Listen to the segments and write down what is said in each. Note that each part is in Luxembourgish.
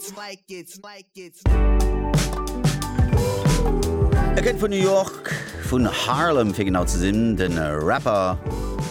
E kënnt vun New York, vun Harlem fir genau ze sinn, de Rapper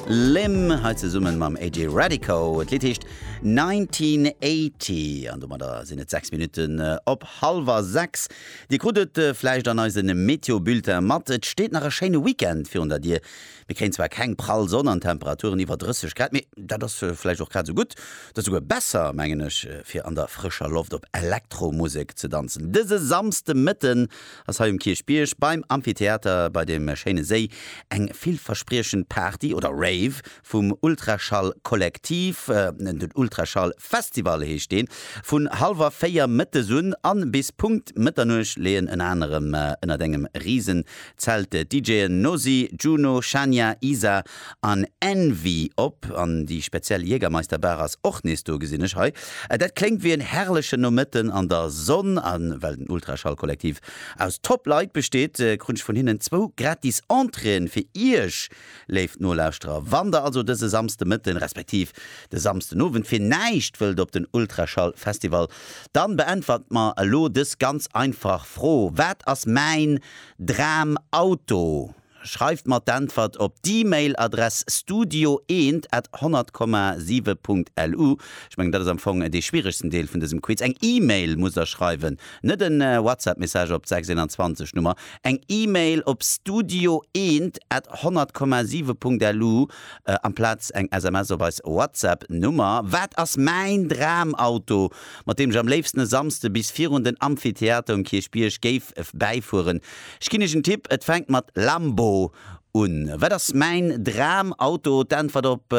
Lim, hei zesummen mam AJ Radico. Et Lidd heescht 1980 an domadder sinn et 6 Minutten op hallwer 6. Dir krut et vläicht an eise Meteo-Bulletin mat, et steet nach e schéine Weekend virun der Dier. Mir kréien zwar keng prall Sonn an Temperaturen iwwer 30 Grad, mee dat ass vläicht och grad esou gutt, dat esouguer besser, mengen ech, fir an der frëscher Loft op Elektromusek ze danzen. Dëse Samsdemëtten ass hei um Kierchbierg beim Amphitheater bei dem schéine Séi eng villverspriechend Party oder Rave vum Ultraschall Kollektiv, den Ultraschall Festival heescht deen. Vun hallwer 4 mëttes un an bis Punkt Mëtternuecht leeën ënner anerem ënnert engem rise Zelte DJen Nosi, Juno, Shania, Isa an Envy op an déi speziell Jägermeister Bar ass och nees do, gesinn ech hei. Dat kléngt wéi en herrlechen Nomëtten an der Sonn an well den Ultraschall-Kollektiv aus Top Leit besteet, krunn ech vun hinnen zwou gratis Entréeën fir iech léif Nolauschterer. Wann der also dëse Samsdemëtten respektiv de Samsdenowend fir näischt wëllt op den Ultraschall-Festival, dann beäntwert mer elo dës ganz einfach Fro, Wat ass mäin Dram Auto? Schreift mer d'Äntwert op d'E-Mail Adress studio eent at 100, 7 Punkt LU. Ech mengen dat ass am Fong dee schwieregsten Deel vun dësem Quiz. Eng E-Mail muss der schreiwen, net en WhatsApp Message op d'Sechs-Eenanzwanzeg Nummer. Eng E-Mail op studio eent at 100, 7 Punkt LU amplaz eng SMS op eis WhatsApp Nummer. Wat ass mäin Dram Auto? mat deem ech am léifsten e Samsde bis virun den Amphitheater um Kierchbierg géif bäifueren. Ech ginn iech en Tipp, et fänkt mat Lambo un. Wat ass mäin Dramauto? D'Äntwert op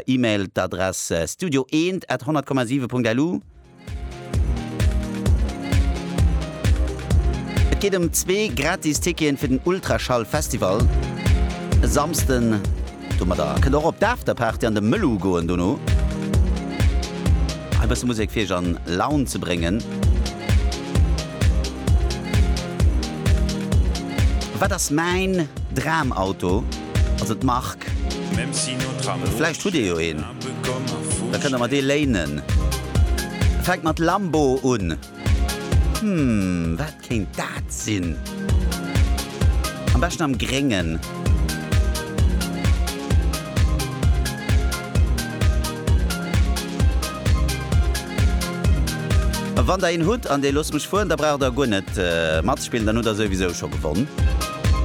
Email, d'Adress studio eent at 100,7 Punkt LU. Et geet ëm zwee gratis Ticketen fir den Ultraschall Festival e Samsden. Domadder kënnt der och op d'Afterparty an de Mëllu goen dono. E bësse Musek fir iech an Laun ze bréngen. Wat ass mäin Dramauto? Also d'Mark. Vläicht hutt dir jo een, da kënnt der mer dee léinen. Fänkt mat Lambo un. Hm, wat? Kéint dat sinn? Am beschten am Gréngen. Wann der een hutt an dee looss mech fueren, da braucht der guer net matspillen, dann hutt der souwisou scho gewonn.